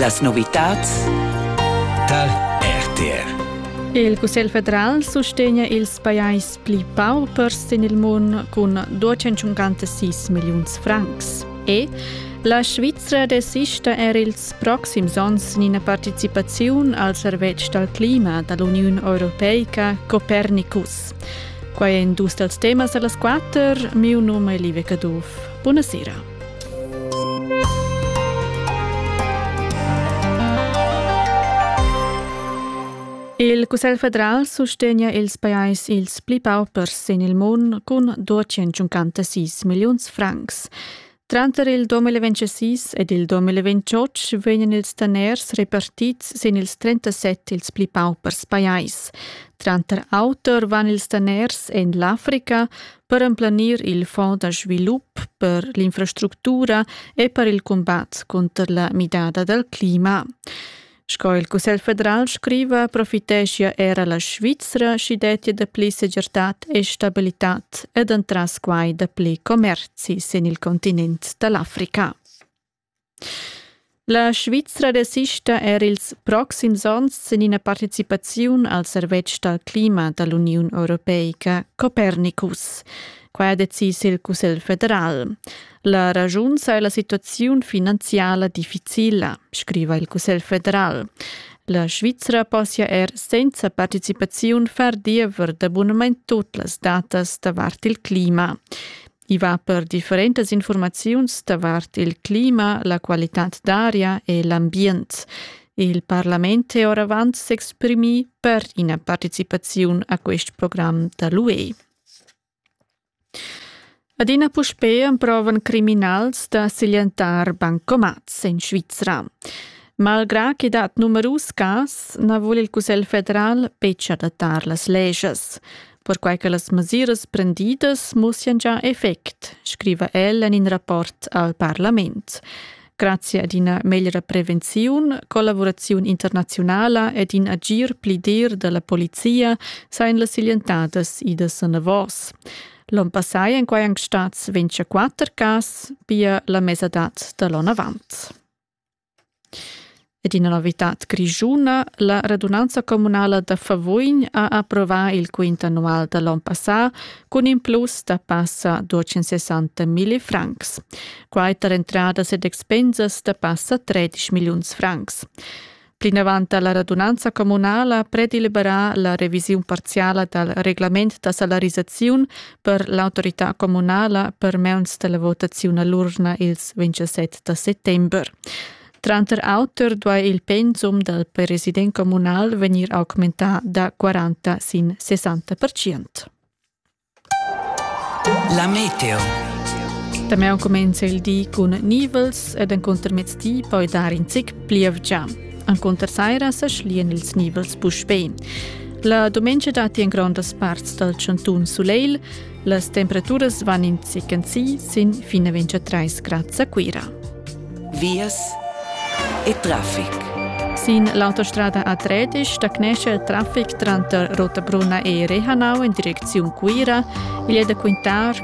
Las novitads tar RTR. Il Cussegl federal sustegna ils pajais pli paupers sin il mund cun 256 milliuns francs. E la Svizra desista er ils proxims onns in ina participaziun al servetsch dal clima da l'Uniun Europeica Copernicus. Quai è in dus dals temas da las quatter. Miu num è Live Caduff. Buonasera. Il Cussegl federal sustegna ils pajais ils pli paupers sin il mund cun 256 milliuns francs. Tranter il 2026 ed il 2028 vegnan ils daners repartids sin ils 37 ils pli paupers pajais. Tranter auter van ils daners en l'Africa, per emplanir il fond da svilup per l'infrastructura e per il combat contro la midada dal clima. Sco il Cussegl federal scriva, profiteschia era la Svizzera schi dettia da pli segirtad e stabilitad ed entras quai da pli commerzi sin il continent da l'Africa. La Svizra desista er ils proxims onns sin ina participaziun al servetsch dal clima da l'Uniun europeica Copernicus. Quai ha decis il Cussegl federal. La raschun saja la situaziun finanziala difficila, scriva il Cussegl federal. La Svizra possia er senza participaziun far diever d'abunament tut las datas davart il clima. I va per differentas informaziuns davart il clima, la qualitad d'aria e l'ambient. Il parlament è oravant s'exprimì per ina participaziun a quest program da l'UE. Adina puspè emprovan criminals da siglientar bancomats en Svizra. Malgrà che dat numerus cas, na vul il Cussegl federal betg adattar las leges. perquai che las mesiras prendidas mussian già effect, scriva el en in rapport al parlament. Grazie ad ina meglra prevenziun, collaboraziun internaziunala ed in agir pli dir dalla polizia sain las siglientadas idas anavos. L'on passai en quai anc stats 24 cas, pia la mesadad da l'on avant. Ed ina novitad grischuna, la radunanza communala da Favugn ha approvà il quint annual da l'onn passà cun in plus da passa 260 milli francs. Quai tar entradas ed expensas da passa 13 milliuns francs. Plinavant ha la radunanza communala predeliberà la revisiun parziala dal reglament da salarisaziun per l'autorità communala per meuns della votazione all'urna ils 27 da settember. Tranter auter duai il pensum del president comunal venir augmentar da 40 sin 60 percent. La meteo. También comienza el día con nivels ed en contermezzi poi dar in zic plievgia. Encunter saira sa schlian ils nibels puspei. La dumengia datti en grondas parts dal chantun Suleil. Las temperaturas van in zichen si sin fine 23 grad a Cuira. Vias e traffic. Sin l'autostrada A13 stagnesce il traffic tranter Rotabruna e Rehanau in direcziun Cuira. Igl è da quintar